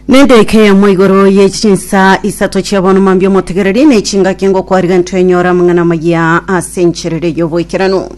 Nenderike yamo igoro ye chinsa isato chia bono mambi omotegereri ne chingaki ngokwariga ntwenyora amang'ana amaya ase encherere y'oboikeranu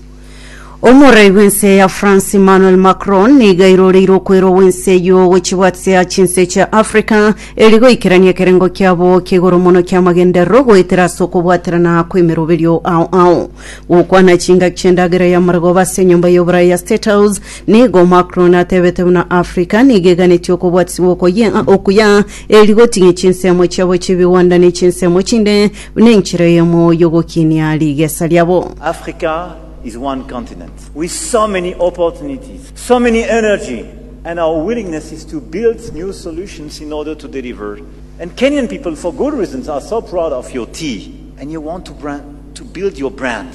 omorei bw'ense ya france emmanuel macron niga iroreire okwero gw'ense eyio gochibwatisia chinse chia africa eri goikerania ekerengo kiabo ki'igoro mono ki'amagenderero goetera ase okobwaterana kw'emeroberio ao ao gokwana chingaki chi'endagera y'amargoba ase enyomba y'oboraya ya state house Nigo Macron atebete buna Africa nigo eganetie okobwatisibwa okoyia okuya eri gotinyia chinsemo chiabo chi'ebigwanda ne chinsemo chinde buna enchera eyemo y'ogokinia rigesa riabo. Africa is one continent with so many opportunities, so many energy and our willingness is to build new solutions in order to deliver and Kenyan people for good reasons are so proud of your tea and you want to brand to build your brand.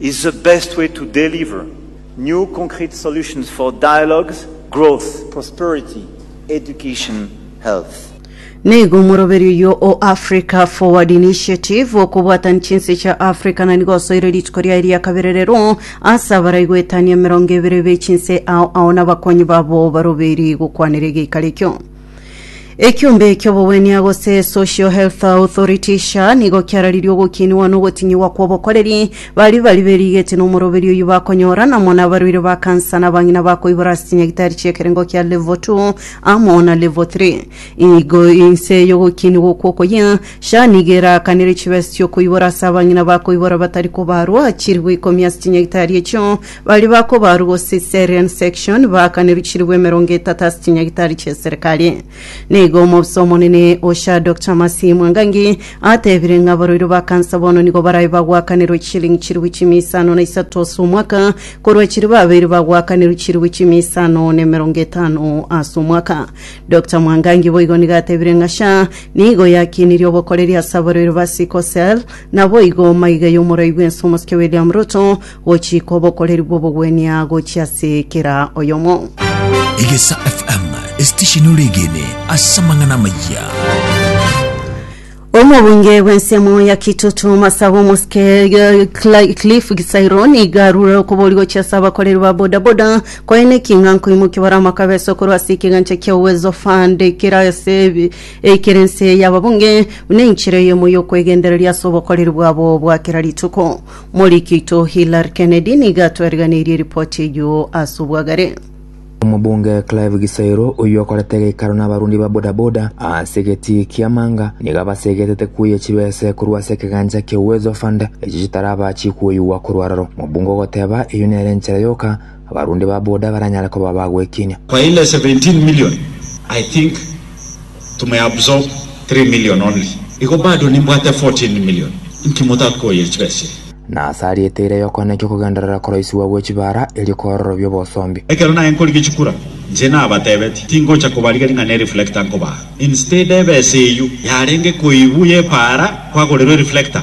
is the best way to deliver new concrete solutions for dialogues, growth, prosperity, education, health. Nigo omoroberi oyio o Africa Forward Initiative okobwatania chinse chia Africa na nigo osoire rituko riaye ria kabere rero ase abarai goetania emerongo ebere be chinse ao ao na abakonyi babo barobeiri gokwanera egeikaro ekio. Ekiombe ki'obogwenia gose Social Health Authority SHA nigo kiararirie ogokiinigwa na ogotinyigwa kw'obokoreri baria bari berigeti na omoroberi oyio bakonyora namo na abarwaire ba kansa na abang'ina bakoibora ase chinyagitari chi'ekerengo kia Level 2 amo na Level 3. Igo inse y'ogokiinigwa okwo okoyia, SHA nigo eraakanere chibesa chi'okoibora ase abang'ina bakoibora batari kobaarwa chilifu ikomi ase chinyagitari echio Baria bakobarwa go Caesarean section baakanirwe chiribu emerongo etato ase chinyagitari chi'eserekari. Na igo omobisa omonene o SHA Doctor Mercy Mwangangi atebire ng'a abaroiru ba kansa bono nigo barabe bagwakanirwe chisiringi chiribu chimia isano na isato ase omwaka korwa chiribu abairi bagwakanirwe chiribu chimia isano na emerongo etano ase omwaka. Doctor Mwangangi boigo nigo atebire ng'a SHA nigo yakinirie obokoreri ase abaroiru ba sickle cell naboigo maiga y'omorai bw'ense omosike William Ruto Gochika obokoreri bw'obogwenia gochia ase kera oyomo. Egesa FM, esitesheni ore egene ase amang'ana amayia. Omobunge bw'ensemo ya Kitutu Masabu Mosike Cla- Cliff Gisairo nigo arure okobori gochia ase abakoreri ba bodaboda koe nekinga nkoimokia bare amakabesa okorwa ase ekegancha kia Uwezo Fund ekere ase ebi- ekere ense y'ababunge buna enchera eyemo y'okwegendereria ase obokoreri bwabo bwa kera rituko. Moriki oito Hillary Kennedy nigo atwariganeirie ripoti eyio ase obwagare. Omobunge Clive Gisairo oyio okorete geikaro n'abarundi ba bodaboda ase egetii kia Manga nigo abasegetete kuya chibese korwa ase ekegancha kia Uwezo Fund echio chitaraba chikoigwa korwa aroro. Omobunge ogoteba eyio nere enchera yoka Abarundi ba boda baranyare koba ba gwekiinia. Kwa ile 17 million I think to may absorb 3 million only igo bado nimbwate 14 million inki motakoyire chibesa chiria? Na ase aria eteira y'okwana ekia okogenderera koroisigwa gwe chibaara erio koororobia obosombi. Ekero naye nkorigia chikura, inche nabatebetie, tingocha kobarigeria ng'a ne reflector nkobaa. Instead ebesa eyio yarenge koibu y'epaara kwagorirwe reflector,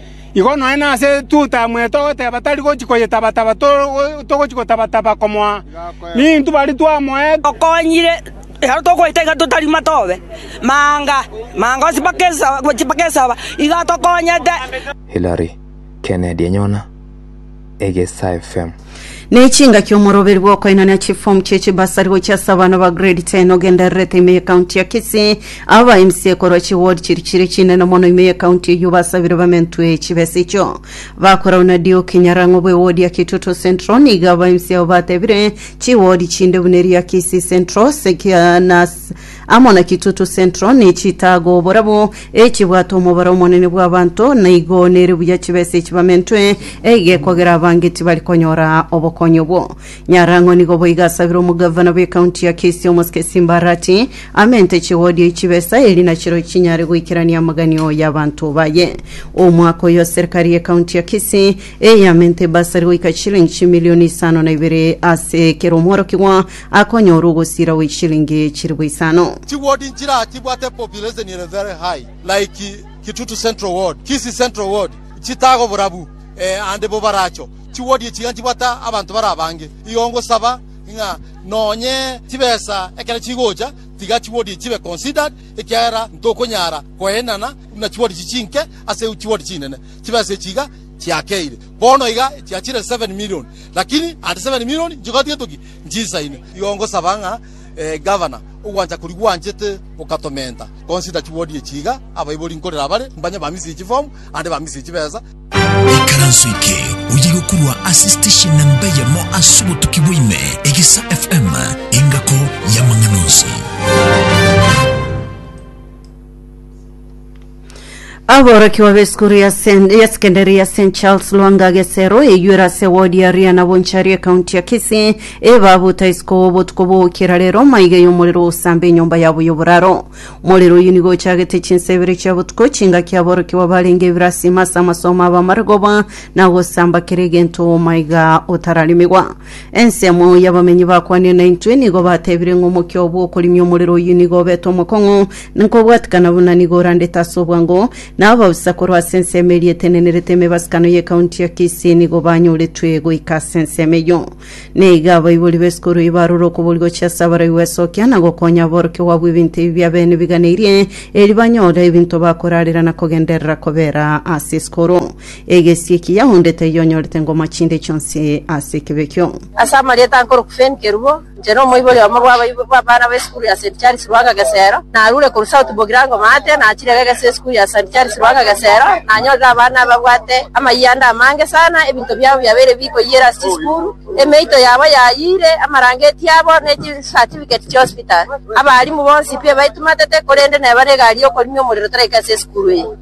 Igo nonya nase etuta mweto ogoteba tari gochi koyetaba-taba togochi gotaba-taba komoa, ninintwe baria twamoete. Tokonyire, ekero tokoita iga totarima tobe manga manga ase mpaka esaba gochia mpaka esaba iga tokonyete. Hillary, Kennedy enyona. Egesa FM. Nechingaki omoroberi bwokoinania chifomu chie chibasari gochia ase abana ba grade 10 ogendererete ime ye county ya Kisii. Aba ba mca korwa chi ward chiri chire chinene mono ime ye county eyio basabire bamentwe chibesa echio. Bakorauna Duke Nyarang'o bwe ward ya Kitutu Central nigo aba mca abo batebire chi ward chinde buna eri ya Kisii Central, Sekia na amo na Kitutu Central ne chitaago oborabwo echibwate omobaro omonene bw'abanto, na igo nere buya chibesa echi bamentwe eiga ekogera abange tibari konyora obokonyi obwo. Nyarang'o nigo boiga asabire omogavana bw'ekaunti ya Kisii Omosike Simba Arati amente chigodio echibesa eri nachiro chinyare goikerania amaganio y'abanto baye. Omwaka oyo serikari y'ekaunti ya Kisii eyamente ebasari goika chilingi chimilioni isano na ibere ase kera omworokigwa Akonyora ogosira gwe chishilingi chilifu isano. Chi ward nchira chibwate population ere very high like Kitutu Central ward, Kisii Central ward, chitago borabu eh ande bo baracho. Chi ward echi iga nchibwate abanto bare abange. Igo ngosaba ng'a nonye chibesa ekero chigocha tiga chi ward echi chibe considered ekiagera ntokonyara koenana buna chi ward echi chinke ase chi ward chinene. Chibesa echi iga chiakeire. Bono iga chiachire seven million lakini ande seven million nchigoti getoki Nchisa ime, igo ngosaba ng'a Gavana, ogwancha koria gwanchete gokatomenta, consider chiwodi echi iga, abaibori nkorera bare, mbanye ba misiri chifomu, ande ba misiri chibesa. Ikaranso eke oye gokorwa ase station namba eyemo ase obotuki bwa ime, Egisa FM, engako y'amang'ana onsi. Aborokiwa b'esukuru ya Sen- ya sekendari ya St Charles Lwanga Gesero eyuere ase ewodi ya Ria na Bonchari ekaunti ya Kisii ebabuta isiko obotuko bw'ogokira rero maiga y'omorero ogosamba enyomba yabo y'oboraro. Omorero oyio nigo ochagete chinsa ibere chia botuko chingaki aborokiwa barenge ebiro asima ase amasomo aba amare goba na gosamba kera egento omaiga otararemigwa. Ensemo y'abamenyi bakwanire naintwe nigo batebire ng'a omokia oo bw'okorimia omorero oyio nigo obete omokong'u, na kobwatikana buna nigo orandete ase obwango, na abaofisa korwa ase ensemo eria etenenerete emebasikano y'ekaunti ya Kisii nigo banyoretwe goika ase ensemo eyio. Na iga abaibori b'esukuru eyio barure okobori gochia ase abaroi gwesokia na gokonya aborokigwa abwo ebinto ebi bi'abeene biganeirie, erio banyore ebinto bakorarera na kogenderera kobera ase esukuru. Egesie ki yaundete yonyorete ngoma chinde chionsi ase ekebe ekio. Ase amarieta ankoroku Fenn Kerubo, inche na omoibori omo bw'abaibori bw'abana be Sukuru ya St. Charles Ruaka Gesero, narure korwa South Bogirango Maate, nachire Gegese Sukuru ya St. Charles Ruaka Gesero, nanyorire abana ababwate amayianda amange sana, ebinto biabo biabeire bikoyiire ase chisukuru, emeito yabo yayiire, amarangeti abo, ne chisatifigeti chi'hospital. Abaalimu bonsi pi ebaitumatete, korende neba negari y'okorimia omorero toraika ase esukuru eye.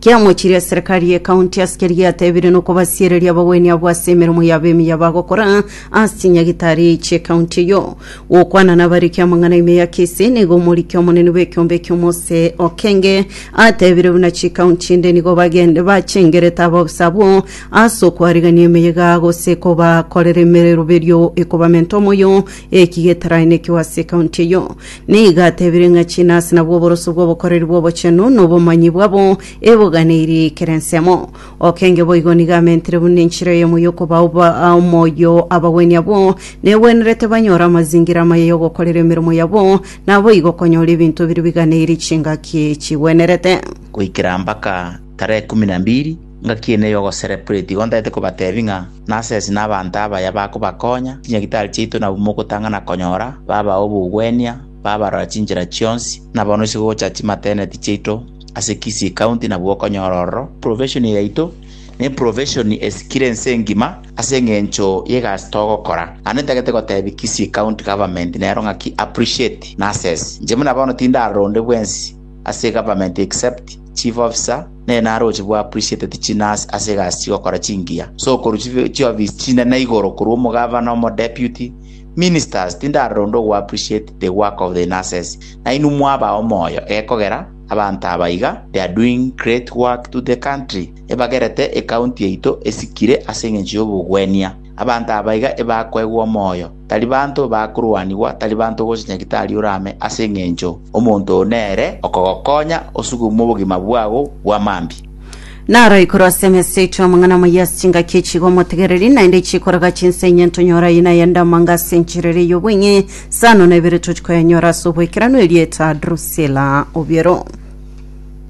Kiamochirie eserekari ye county ase keria yatebire nokobasiereria abagweni abwo ase emeremo yabo emiya bagokora ase chinyagitari chie county eyo. Gokwana nabariki amang'ana ime ya Kisii nigo omoriki omonene bw'ekiombe ekio Mose Okenge atebire buna chicounty ende nigo bagende bachengerete abaofisa abwo ase okwarigania emeyega gose kobakorera emeroberio ekobamenta omoyo ekigetaraini ekio ase county eyo. Nigo atebire ng'a chinase nabwo oboroso bw'obokoreri bw'obochenu na obomanyi bwabo eboganeirie ekero ensemo. Okenge boigo nigo amentire buna enchera eyemo y'okobao ba- omoyo abagwenia abwo negwenerete banyore amazingira amaya y'ogokorera emeremo yabo, naboigo konyora ebinto biria biganeirie chingaki chigwenerete. Goikera mpaka tarehe kumi na mbiri Ngaki eye neye ogocelebrate, igo ntaete kobateebia ng'a nasesi nabaanto abaya bakobakonya, chinyagitari chiaito nabwo mogotang'ana konyora, babaa obogwenia, babarora chinchera chionsi, na bono isiko gocha chimateneti chiaito ase Kisii County nabwo okonyora ororo. Profession yaito ne profession esikire ense engima ase eng'encho y'egasi togokora. Naende ntagete goteebia Kisii County Government nero ng'aki appreciate nasesi. Inche buna bono tindaroronde bwensi ase Government except Chief Officer, Nenaro oche bwa appreciate ti chinasi ase egasi chigokora chingiya, sokorwa chibe chiofisi chinene igoro korwa omogavana, omodeputy, ministers, tindarora onde ogo appreciate the work of the nurses, nainwe mwabaa omoyo gekogera abanto aba iga they are doing great work to the country ebagerete ecounty yaito esikire ase engencho yobogwenia abanto aba iga ebakoegwa omoyo. Tari banto bakorwanigwa, tari banto gose nyagitari orame, ase engencho omonto oo nere okogokonya osugume obogima bwao bwa mambia. Naro igoro ase emesa yaito amang'ana amaya ase chingaki echi iga omotegereri, naende chikoraga chinsa inye ntonyore aye na ayende amanga ase enchera eria y'obong'e, sano na ibere toti koyanyora ase oboikeranu erieta Drusila obiero.